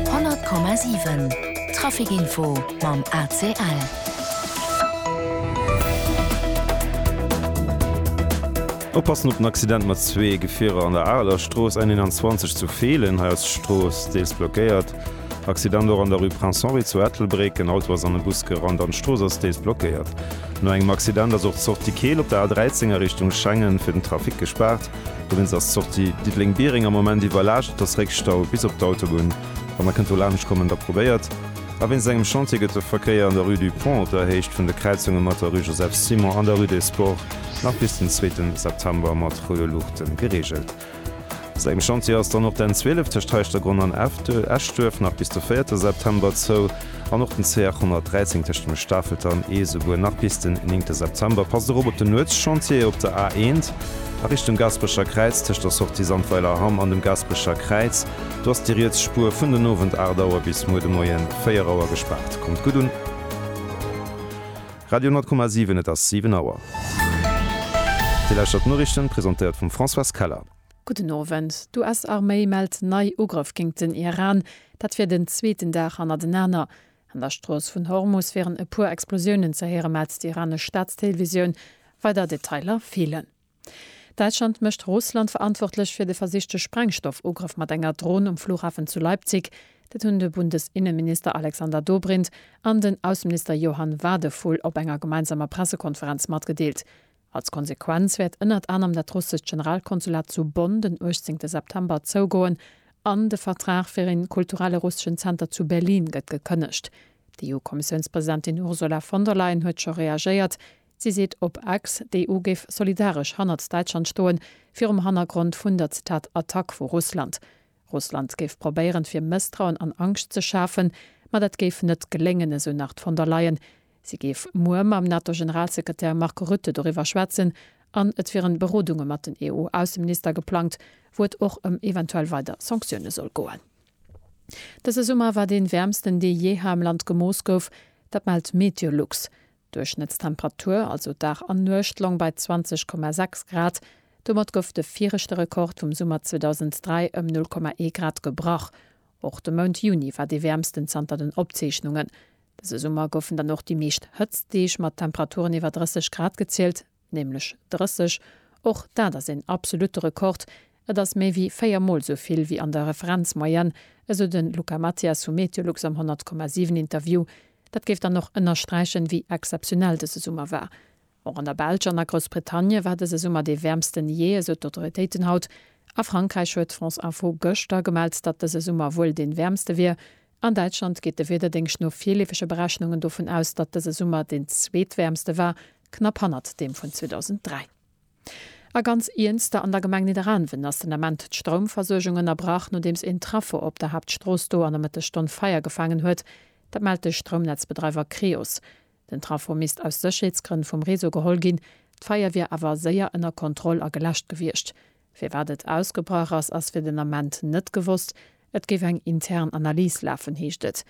100,7 Trafic Info mam ACL. Oppassen op den Accident mat zwee Gefierer an der Areler Strooss N 21 zu Feelen. Hei ass d'Strooss deels blockéiert. Accident och an der Rue Prince Henri zu Ettelbréck. En Auto ass an e Bus gerannt an d'Strooss ass deels blockéiert. No engem Accident ass och d'Sortie Keel op der A 13 a Richtung Schengen fir den Trafic gespaart. Dowéinst ass d'Sortie Diddeleng-Biereng am Moment iwwerlaascht, et ass Réckstau bis op d'Autobunn. Wann der kënnt do laanscht kommen, da probéiert a wéinst engem Chantier gëtt de Verkéier an der Rue du Pont op der Héicht vun de Kräizunge mat der Rue Joseph Simon an der Rue des Sports nach bis den zweete September mat roude Luuchte gereegelt. Wéinst engem Chantier ass dann och d'N 12 tëscht Heischtergronn an Eschduerf nach bis de véierte September zou. An och den C813 tëscht dem Stafelter an Ees esouguer nach bis den 9 September. Passt erop op den Nuetschantier op der A1 a Richtung Gasperecher Kräiz tëscht der Sortie Sandweiler Hamm an dem Gasperecher Kräiz. Do ass déi riets Spuer vun den Owend 8 Auer bis muer de Moien 4 Auer gespaart. Kommt gutt un! Radio 10,7 Et ass 7 Auer. Dir lauschtert d'Noriichten, presentéiert vum Françoise Keller. Gudden Owend, D'US-Arméi mellt nei Ugrëff géingt den Iran, dat wier den zweeten Dag hannertenaner. An der Strooss vun Hormus wieren e puer Explosiounen ze héieren, mellt d'iranesch Staatstélévisioun. Weider Detailer feelen. Däitschland mécht Russland verantwortlech fir de versichte Sprengstoffugrëff mat enger Dron um Flughafen zu Leipzig. Dat hunn de Bundesinneminister Alexander Dobrindt an den Ausseminister Johann Wadephul op enger gemeinsamer Pressekonferenz matgedeelt. Als Konsequenz wäert ënnert anerem dat russescht Generalkonsulat zu Bonn den 18 September zougoen an de Vertrag fir een kulturelle russeschen Zenter zu Berlin gëtt gekënnegt. D'EU-Kommissiounspresidentin Ursula von der Leyen huet scho reagéiert. Si seet op X, d'EU géif solidaresch hannert Däitschland stoen, virum Hannergrond vun der, Zitat, Attack vu Russland. Russland géif probéieren, fir Mësstrauen an Angscht ze schafen, ma dat géif net geléngen, esou nach d'Von der Leyen. Si géif muer mam NATO-Generalsekretär Mark Rutte doriwwer schwätzen an et wieren Berodunge mat den EU-Ausseminister geplangt, wou et och ëm eventuell weider Sanktioune soll goen. Dëse Summer war dee wäermsten, dee jeeher am Land gemooss gouf. Dat mellt Meteolux. D'Duerchschnëttstemperatur, also Dag an Nuecht, long bei 20,6 Grad. Domat gouf de viregte Rekord vum Summer 2003 ëm 0,1 Grad gebrach. Och de Mount Juni war dee wäermsten zanter den Opzeechnungen. Dëse Summer goufen dann och déi meescht Hëtztdeeg mat Temperaturen iwwer 30 Grad gezielt, nämlech 30. Och dat ass een absolutte Rekord, et ass méi wéi véier Mol esou vill wéi an der Referenzmoyenne, esou de Luca Mathias vu Meteolux am 100,7 Interview. Dat géif dann och ënnersträichen, wéi exzeptionell dëse Summer war. Och an der Belsch an a Groussbritannie war dëse Summer dee wäermsten jee, esou d'Autoritéiten haut. A Frankräich huet France Info gëschter gemellt, datt dëse Summer wuel dee wäermste wier. An Däitschland geet de Wiederdéngscht no virleefege Berechnungen dovun aus, datt dëse Summer deen zweetwäermste war, knapp hannert deem vun 2003. A ganz iernster, an der Gemeng Nidderaanwen ass den Ament d'Stroumversuergung ënnerbrach, nodeems een Traffo op der Haaptstrooss do an der Mëttesstonn Feier gefaangen huet. Dat mellt de Stroumnetzbedreiwer Creos. Den Trafo misst aus Sécherheetsgrënn vum Réseau geholl ginn. D'Feier wier awer séier ënner Kontroll a geläscht gewiescht. Firwat et ausgebrach ass, ass fir den Ament net gewosst. Et géif eng intern Analys lafen, heescht et.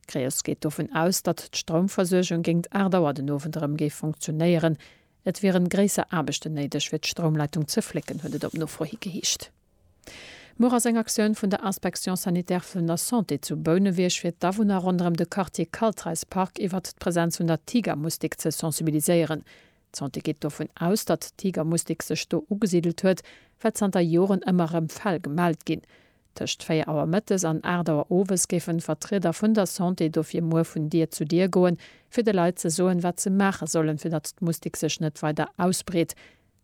Creos geet dovun aus, datt d'Stroumversuergung géingt 8 Auer den Owend erëm géif funktionéieren. Et wieren gréisser Aarbechten néideg, fir d'Stroumleitung ze flécken, huet et op Nofro hi geheescht. Muer ass eng Aktioun vun der Inspection sanitaire vun der Santé zu Bouneweg fir d'Awunner ronderëm de Quartier Kaltreis Park iwwert d'Presenz vun der Tigermustik ze sensibiliséieren. D'Santé geet dovun aus, datt d'Tigermustik sech do ugesidelt huet, well zanter Joren ëmmer erëm Fäll gemellt ginn. Tëscht 4 Auer Mëttes an 8 Auer Owes géifen Vertrieder vun der Santé dofir muer vun Dier zu Dier goen, fir de Leit ze soen, wat se maache sollen, fir datt d'Mustik sech net weider ausbreet.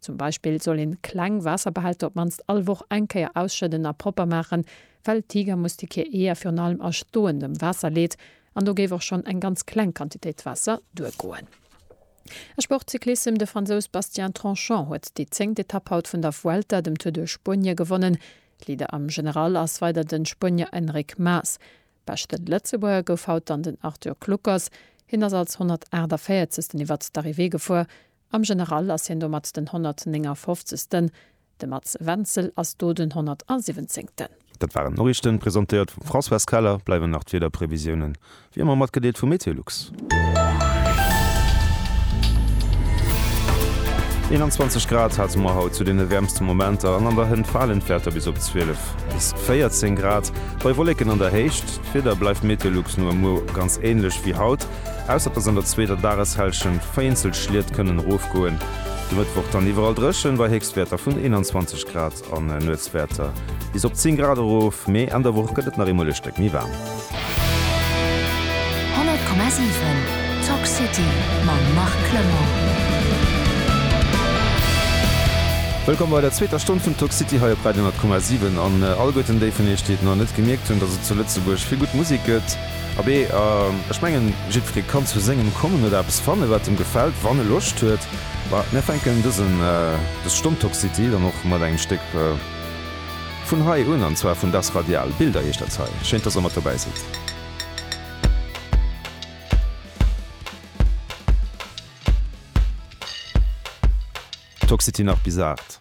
Zum Beispill soll een kleng Waasserbehälter op mannst all Woch eng Kéier ausschëdden a propper maachen, well d'Tigermustik hir Eeër virun allem a stoendem Waasser leet an do géif och schonn eng ganz kleng Quantitéit Waasser duergoen. A Sportcyclissem, De Fransous Bastien Tranchant huet déi zéngt Etapp haut vun der Vuelta, dem Tour de Spuenie, gewonnen. Leader am General ass weider de Spuenier Enric Mas. Beschte Lëtzebuerger gouf haut dann den Arthur Kluckers. Hien ass als 148. iwwert d'Arrivée gefuer Am General ass hien domat den 159. De Mats Wenzel ass do den 117. Dat waren d'Noriichten, presentéiert vum Françoise Keller. Bleiwen nach d'Wiederprevisiounen, wéi ëmmer matgedeelt vu MeteoLux. 21 Grad hate mer haut zu deene wäermste Momenter an an der Hënt falen d'Wäerter bis op 12 bis 14 Grad bei Wolleken an der Héicht. D'Wieder bleift MeteoLux no e muer ganz änlech wéi haut. Ausser dass an der zweeter Dageshälschent vereenzelt Schliet kënnen erofgoen. De Mëttwoch dann iwwerall dréchen, bei Héchstwäerter vun 21 Grad an Nuetswäerter bis op 10 Grad erof, mee Enn der Woch gëtt et nach eemol e Stéck méi waarm. 100,7 Talk City mam Marc Clement. Wëllkomm bei der zweeter Stonn vun Talk City hei op Radio 100,7. An allguerten déi vun iech, déi et nach net gemierkt hunn, dass et zu Lëtzebuerg vill gutt Musek gëtt, Abee, ech mengen, jiddweree kann zu sengem kommen oder eppes fannen, wat em gefält, wann e Loscht huet. Ma mir fänken dësen, dës Stonn Top City dann och mat engem Stéck vun hei un, an zwar vun Das Radial. Bilder heescht dat hei. Schéin, dass Der mat dobäi sidd. Toxity nach bis 8.